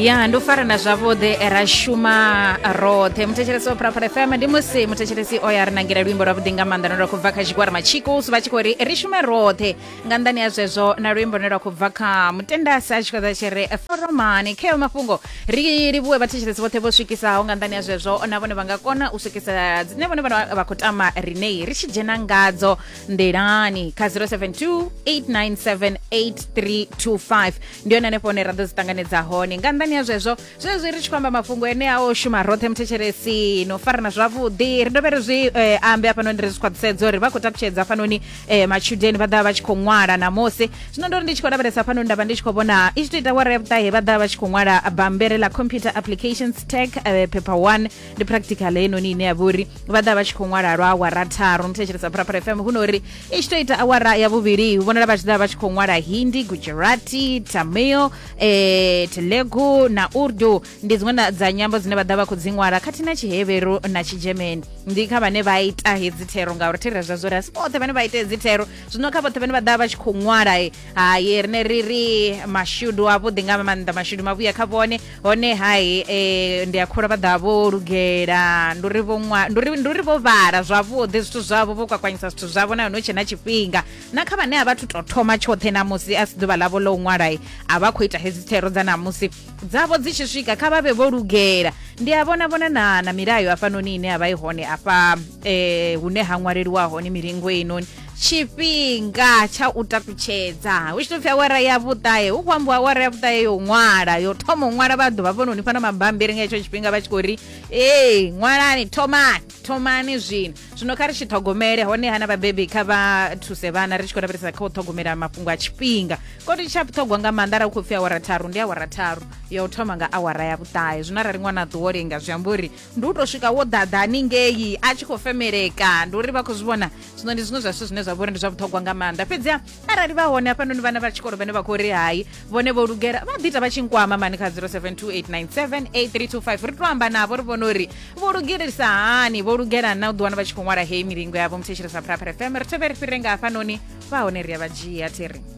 ya ndi u farana zwavhuḓi ra shuma roṱhe muthetshelesi wa phuraphura fm ndi musi muthetshelesi o ya ri nangela luimbo lwavhuḓi nga maanḓa lune lwa khou bva kha tshigwara matshikus vha tshi khou ri ri shume roṱhe nga nḓani ya zwezwo na luimbo lune lwa khou bva kha mutendasi a tshi khou ḓa tshi ri foromani kheo mafhungo ri livhuwe vhathetshelesi vhoṱhe vho swikisaho nga nḓani ya zwezwo na vhone vha nga kona u swikisa dzine vhone vha khou tama rinei ri tshi dzhena ngadzo ndelani kha 0728978325 ndi yone hanefho hone ra ḓo dzi ṱanganedza hone nga nnḓani ya zwezwo zwezwi ri tshi khou amba mafhungo enea o shuma roṱhe muthetshelesi no farana zwavhuḓi ri dovhe ri zwi eh, ambe hafhanoni ri zwi khwaṱhisedza uri vha khou takutshedza hafhanoni eh, matshudeni vha ḓa vha tshi khou ṅwala namusi zwino ndo ri ndi tshi khou lavhelesa hafhanoni nda vha ndi tshi khou vhona i tshi to ita wara ya vhuṱahe vha ḓa vha tshi khou ṅwala bambere ḽa computer applications tech eh, paper one ndi practical heinoni ine ya vha uri vha ḓa vha tshi khou ṅwala lwa awara tharu muthetshelesa pharapara fm hu no uri i tshi tou ita awara ya vhuvhili hu vhonala vha tshi ḓa vha tshi khou ṅwala hindi gujarati tamil eh, telegu na urdu ndi dziṅwe na- dza nyambo dzine vha ḓa vha khou dzi ṅwala khathihi na tshiheveru na tshigermani ndi kha vhane vha ita hedzi thero ngauri thera zwa zwo ri asi vhoṱhe vhane vha ita hedzi thero zwino kha vhoṱhe vhane vha ḓa vha tshi khou ṅwala eh, haye rine ri ri mashudu avhuḓi nga maanḓa mashudu mavhuya kha vhone hone hai eh, ndi a khula vha ḓa vho lugela ndi uri vho ṅwa- ndi uri- ndi uri vho vhala zwavhuḓi zwithu zwavho vho kwakwanyisa zwithu zwavho na hone hu tshe na tshifhinga na kha vhane a vha thu tou thoma tshoṱhe namusi a si ḓuvha ḽavho ḽo u ṅwalai a vha khou ita hedzi thero dza namusi dzavho dzi tshi swika kha vha vhe vho lugela ndi a vhona vhona na, na milayo hafhanoni ine ya vha i hone afha eh, hune ha ṅwaleliwa hone milingo heinoni tshifhinga tsha u takutshedza hu tshi to pfi awara ya vhuṱahe hu khou ambiwa awara ya vhuṱahe yo ṅwala yo thoma u ṅwala vha ḓuvha vhononi fana mabambiri nga hetsho tshifhinga vha tshi khou ri ee ṅwalani thomani thomani zwino zwino kha ri tshi ṱhogomele hone hana vhabebi kha vha thuse vhana ri tshi khou lavhelesa kha u ṱhogomela mafhungo a tshifhinga koti tsha vhuṱhogwa nga maanḓa ra u khou pfi awara tharu ndi awara tharu ya u thoma nga awara ya vhuṱahe zwino arali ṅwana a ṱuwo lenga zwi amba uri ndi u tou swika wo ḓaḓa haningei a tshi khou femeleka ndi uri vha khou zwi vhona zwino ndi zwiṅwe zwa zwithu zwine zwa vha uri ndi zwa vhuṱhogwa nga maanḓa fhedziha arali vha hone hafhanoni vhana vha tshikolo vhane vha khou ri hai vhone vho lugela vha ḓi ita vha tshi nkwama mani kha 0728978325 ri to amba navho ri vhone uri vho lugelisa hani vho lugela na u ḓiwana vha tshi khou ṅwala heyi milingo yavho muthetshelesa phuraphura fm ri thevhe ri fhire nga hafhanoni vha hone ri a vha dzhia thiri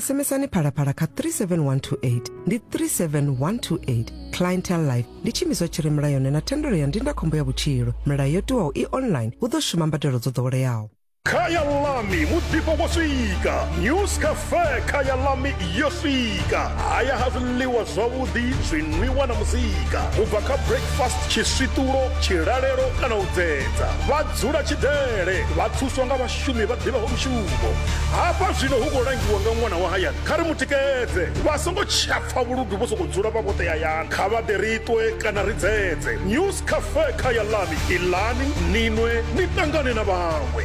sms-ani phalaphala kha 37128 ndi 37128 clientele life ndi tshiimiswa tshi re mulayoni na thendelo ya ndindakhombo ya vhutshilo milayo yo tiwaho i online hu ḓo shuma mbadelo dzo ḓoweleaho khaya lami muḓifho wo swika news cafe khaya lami yo swika haya ha zwiḽiwa zwavhuḓi zwinwiwa na muzika u bva kha breakfast tshiswiṱulo tshilalelo kana u dzedza vha dzula tshidele vha thuswa nga vhashu vhashumi vha ḓivhaho mushumo hafha zwino hu khou langiwa nga ṅwana wa hayani kha ri mu tikedze vha songo tsha pfa vhuludu vho sokou dzula vha vhoṱe hayani kha vha ḓe ri ṱwe kana ri dzedze news cafe kha ya lami ilani ninwe ni ṱangane na vhaṅwe